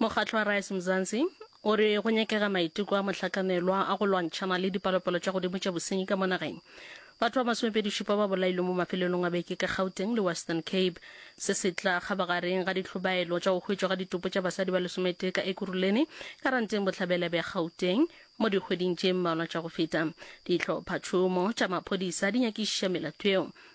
Mokgatlo wa Rise Mzansi o re go nyakega maiteko a mohlakamelwa a go lwantšhana le dipalopalo tša godimo tša bosenyi ka mo nageng. Batho ba masomepedi šupa ba bolailwe mo mafelelong a beke ka Gauteng le Western Cape. Se se tla kgabagareng ga ditlhobaelo tša go hwetšwa ga ditopo tša basadi ba lesometee ka Ekurhuleni, Karanteng Bohlabela bja Gauteng mo dikgweding tše mmalwa tša go feta. Dihlophatšhomo tša maphodisa di nyakišiša melato yeo.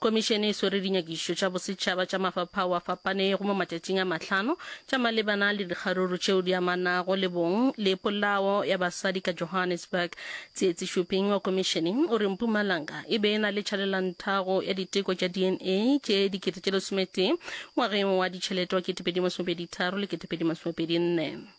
Khomišene e swere dinyakišišo tša bosetšhaba tša mafaphao a fapanego mo matšatšing a mahlano tša malebana le dikgaruru tšeo di amanago le bong le polao ya basadi ka Johannesburg. Tsietsi Shuping wa khomišene o re Mpumalanga e be e na le tšhalelanthago ya diteko tša DNA tše dikete tše lesometee ngwageng wa ditšhelete wa 2023 le 2024.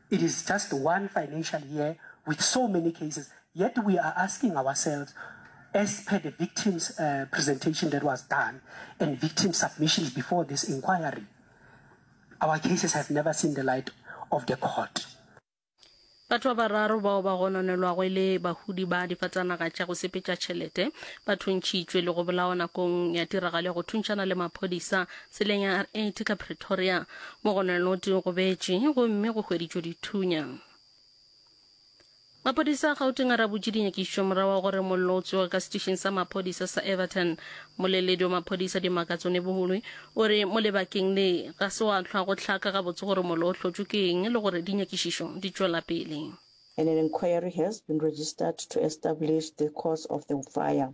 It is just one financial year with so many cases yet we are asking ourselves as per the victims uh, presentation that was done and victim submissions before this inquiry our cases have never seen the light of the court. batho ba bararo bao ba gononelwago e le bahudi ba difatanaga tša go sepetša tšhelete ba thuntšhitšwe le go bolawa nakong ya tiragalo ya go thuntšhana le maphodisa tseleng ya r8 ka pretoria mo go na no di gobetše gomme go hweditšwe dithunya maphodisa a gauteng a rabotše dinyakišo morago wa gore mollo o tsoge ka setišeng sa maphodisa sa everton moleledi wa maphodisa dimakatso nebohulwe o re mo lebakeng le ga se wa tlhwa go tlhaka gabotse gore mollo o hlotšwe ke eng le gore dinyakišišo di tšwela pele and an inquiry has been registered to establish the cause of the fire.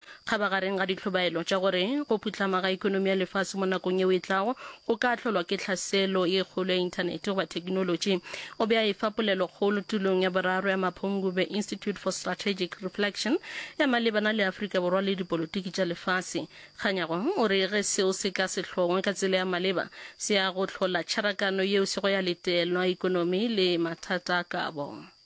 Kgabagareng ga ditlhobaelo tša gore go phuhlama ga ekonomi ya lefase mo nakong yeo e tlago go ka ahlolwa ke tlhaselo ye kgolo ya Inthanete goba thekinolotši, o be a e fa polelokgolo tulong ya boraro ya Mapungubwe Institute for Strategic Reflection ya malebana le Afrika Borwa le dipolotiki tša lefase. Kganyago o re ge seo se ka se hlongwe ka tsela ya maleba, se ya go hlola tšharakano yeo se go ya letelwa ekonomi le mathata a kabo.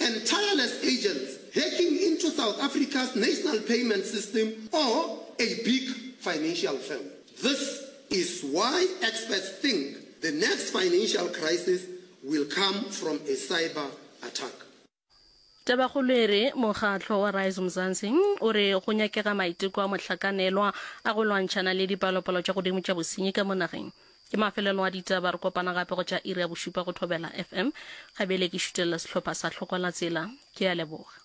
and tireless agents hacking into South Africa's national payment system or a big financial firm. This is why experts think the next financial crisis will come from a cyber attack. Tabakgolo e re mokgatlo wa Rise Mzansi o re go nyakega maiteko a mohlakanelwa a go lwantšhana le dipalopalo tša godimo tša bosenyi ka mo nageng. Ke mafelelo a ditaba, re kopana gape go tša iri ya bošupa go Thobela FM. Ga bjale ke šutelela sehlopha sa Hlokola Tsela. Ke a leboga.